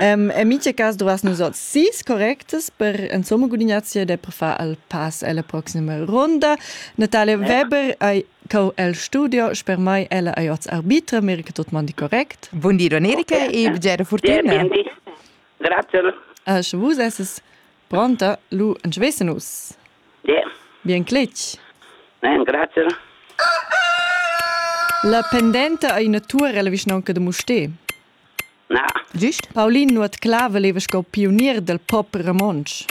En mitge cas dovas nus oz sis correctas per insomma gudignazier de per far el pass alla proxima ronda. Natalia Weber ei co el studio, sper mai ella ei oz arbitra, meri che tot mandi correct. Buondì, Domenica, okay. e bgera fortuna. Grazie. Asche vus esses Pronta? Lu entscheissen nus. Bien. Bien cletg. Bien, grazie. La pendenta ei ina tuor ella vischnaunca de Mustér. Na. Gist? Paulin nuot Cla valeva sco pionier del pop romontsch.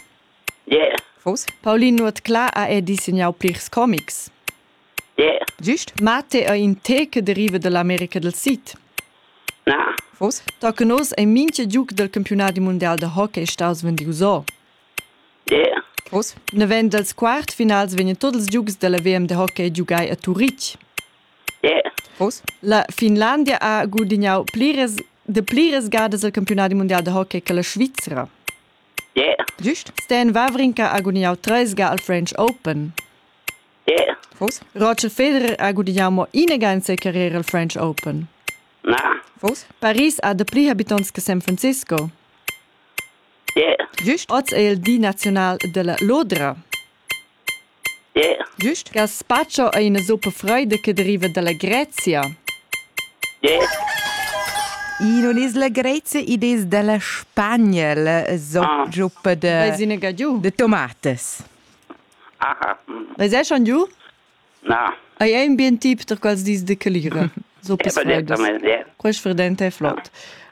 Yeah. Fos? Paulin nuot Cla ha er dissegnau plirs comics. Yeah. Gist, ma te ei in te che deriva dall'America dal Sid. Na. Vos? Da che nos ei mincha giug del campiunadi mundial da hockey staus vendius o. Yeah. Vos? Naven dals quart finals vegnan tots ils giugs della VM de hockey giugai a Turitg. Yeah. Vos? La Finlandia ha gudignau pliras de pliras gadas il campiunadi mundial da hockey che la Svizra. Yeah. Gist? Stan Wawrinka ha gudignau treis ga al French Open. Vos? Roger Federer ha gudignau mo inaga carriera al French Open. Na. Vos? Paris ha dapli habitants che San Francisco. Yeah. Just? Oz è il di nazional della lodra. Yeah. Just? Gaspacho è una zuppa freida che deriva dalla Grezia. Yeah. In un'isla grezia id es dalla Spagna, la zoppa ah. de, de tomates. Vais eschan giu? Na. Ei ei in bien tip per quels dis de calira. So Quei sfrident è flot.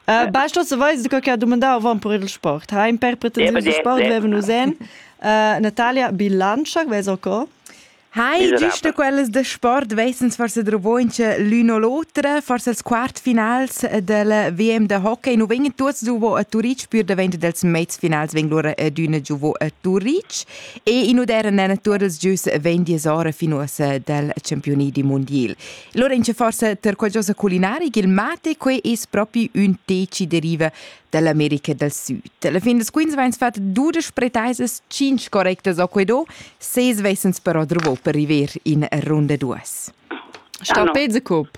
Uh, Basta se vais de qualche domandar van per il sport. Ha in per pretensius de sport veven usen. Uh, Natalia bilancia, ves ok? Hai, giusto quellas de sport wesens forse drovoince l'uno l'otra, forse als quartfinals del WM de hockey, nu vengen tuots giuvo a Turic, pür davent dels mezfinals veng lura ad una giuvo a Turic. E in udern natur dals gius vegn disora fin uossa dal campioni di mondial. Lura in forsa ter qualcosa culinari il mate quei es propi ün teci deriva dall'America del Sud. Alla fin des Queens veins fat dudesch pretaisas, cinc correctas o quedo, seis vesens però drovo per river in ronda duas. Sta ah, no. pez a cup.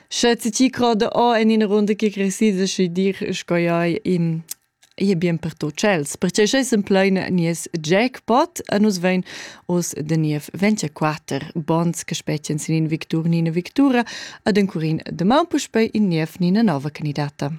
Sche ti ti croda o en ina runda che cresida, sche dir sco ei in è bien per tot tschels, perche sche sem pleina nies jackpot a nus vein oz de niev 24 bonds che spetien sin in victur ni ina victura ad encurin de man puspei in niev ni ina nova candidata.